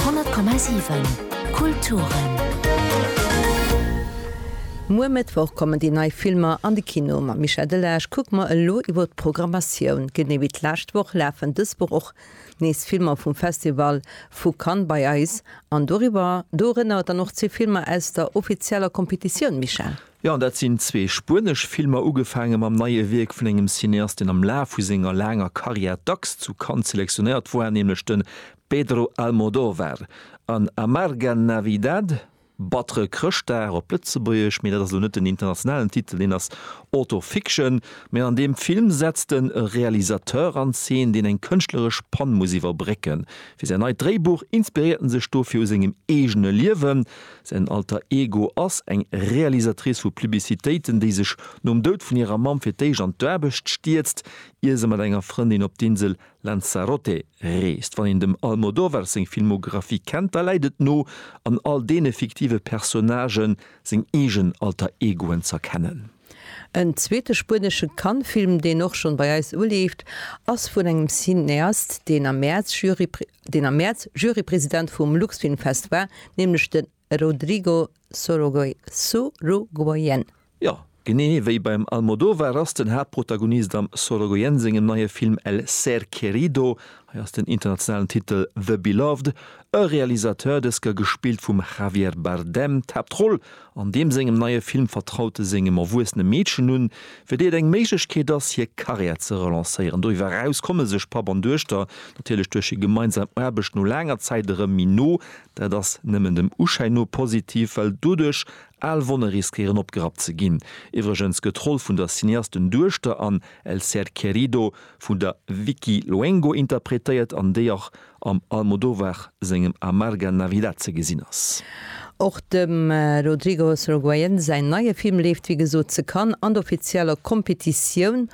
10,7 Kulturen. Muer Mëttwoch kommen déi nei Filmer an de Kino. Mam Michel Delage kucke mer elo iwwer d'Programmatioun. Genee wéi d'lescht Woch lafen dës Woch och nees Filmer vum Festival vu Cannes bei eis an doriwwer dorënner dann och zwee Filmer aus der offizieller Competitioun, Michel. Jo, an dat sinn zwee spuenesch Filmer, ugefaange mam neie Wierk vun engem Cineast, deen am Laf vu senger laanger Karriär dacks zu Cannes selektionéiert war, nämlech de Pedro Almodóvar. An Amarga Navidad, Battere Chrëschtdag op Lëtzebuergesch, mee dat ass elo net den internationalen Titel, deen ass Auto-Fiction. Mee an deem Film setzt en e Realisateur an Zeen, deen eng kënschtleresch Pann muss iwwerbrécken. Fir säin neit Dréibuch inspiréiert en sech dofir u sengem eegene Liewen. Säin Alter Ego ass eng Realisatrice vu Publicitéiten, déi sech nom Doud vun hirer Mamm fir d'éischt an d'Aarbecht stierzt, ier se mat enger Frëndin op d'Insel Lanzarote reest. Wann een dem Almodovar seng Filmographie kennt, da läit et no, an all deene fiktive Personnagë seng eegen Alter Egoen z'erkennen. En zweete spuenesche Cannes-Film, deen och schonn bei eis uleeft, ass vun engem Cineast, deen am Mäerz Jury. Deen am Mäerz Jurypresident vum Luxfilmfest war, nämlech de Rodrigo Sorogoyen. Jo, genee wéi beim Almodovar ass den Haaptprotagonist am Sorogoyen sengem neie Film El ser querido, hei ass den internationalen Titel The Beloved, e Realisateur, dës Kéier gespillt vum Javier Bardem. D'Haaptroll An deem sengem neie Film vertraut e sengem erwuessene Meedchen un, fir déi et eng Méiglechkeet ass, hir Karriär ze relancéieren. Doriwwer eraus komme sech Papp an Duechter natierlech duerch hir gemeinsam Aarbecht no laanger Zäit erëm méi no. Dat ass nëmmen dem Uschäin no positiv, well doduerch al Wonne riskéieren opgerappt ze ginn. Iwwregens gëtt d'Roll vun der Cineasten-Duechter an El Ser Querido vun der Vicky Luengo interpretéiert, an déi och am Almodovar sengem Amarga Navidad ze gesinn ass. Och dem Rodrigo Sorogoyen säin neie Film leeft wéi gesot ze Cannes an der offizieller Competitioun.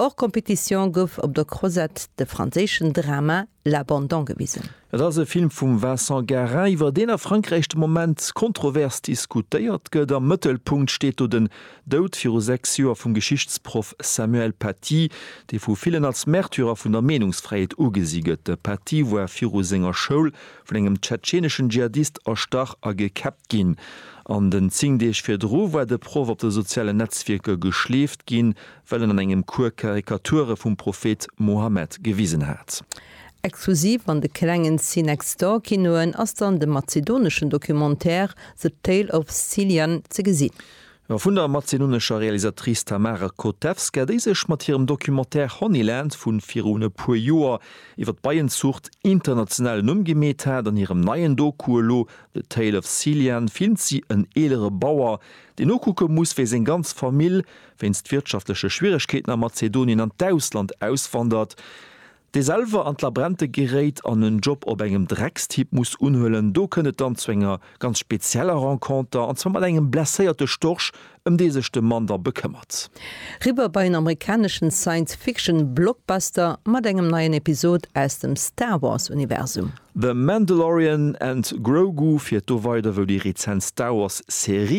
Hors compétition gouf op der Crozette de franséischen Drama L'Abandon gewisen. Et ass e Film vum Vincent Garin, iwwer deen a Frankräich de Moment kontrovers diskutéiert gëtt. Am Mëttelpunkt steet do den Doud viru sechs Joer vum Geschichtsproff Samuel Paty, dee vu villen als Märtyrer vun der Meenungsfräiheet ugesi gëtt. De Paty war viru senger Schoul vun engem tschetscheneschen Dschihadist erstach a gekäppt ginn. An den zéng Deeg virdru war de Proff op de sozialen Netzwierker geschleeft ginn, well en an engem Cours Karikature vum Prophet Mohammed gewisen hat. Exklusiv an de klengen See-Next-Door-Kinoen ass dann de mazedoneschen Documentaire The Tale of Cillian ze gesinn. A vun der mazedonescher Realisatrice Tamara Kotevska, déi sech mat hirem Documentaire Honeyland vu virun e puer Joer iwwer d'Beienzuucht internationalen Numm gemeet hat. An hirem neien Doku elo The Tale of Cillian filmt si en eelere Bauer, deen nokucke muss, wéi seng ganz Famill wéinst wirtschaftleche Schwieregkeeten a Mazedonien an d'Ausland auswandert. dee selwer an d'Labränte geréit an en Job op engem Dreckstipp muss unhuelen, do kënnt et dann zu enger ganz spezieller Renconter, an zwar mat engem blesséierte Storch, ëm dee sech de Mann da bekëmmert. Riwwer bei en amerikaneschen Science-Fiction-Blockbuster mat engem neien Episod aus dem Star Wars-Universum. The Mandalorian and Grogu, fir do weider wou déi rezent Star Wars-Serie.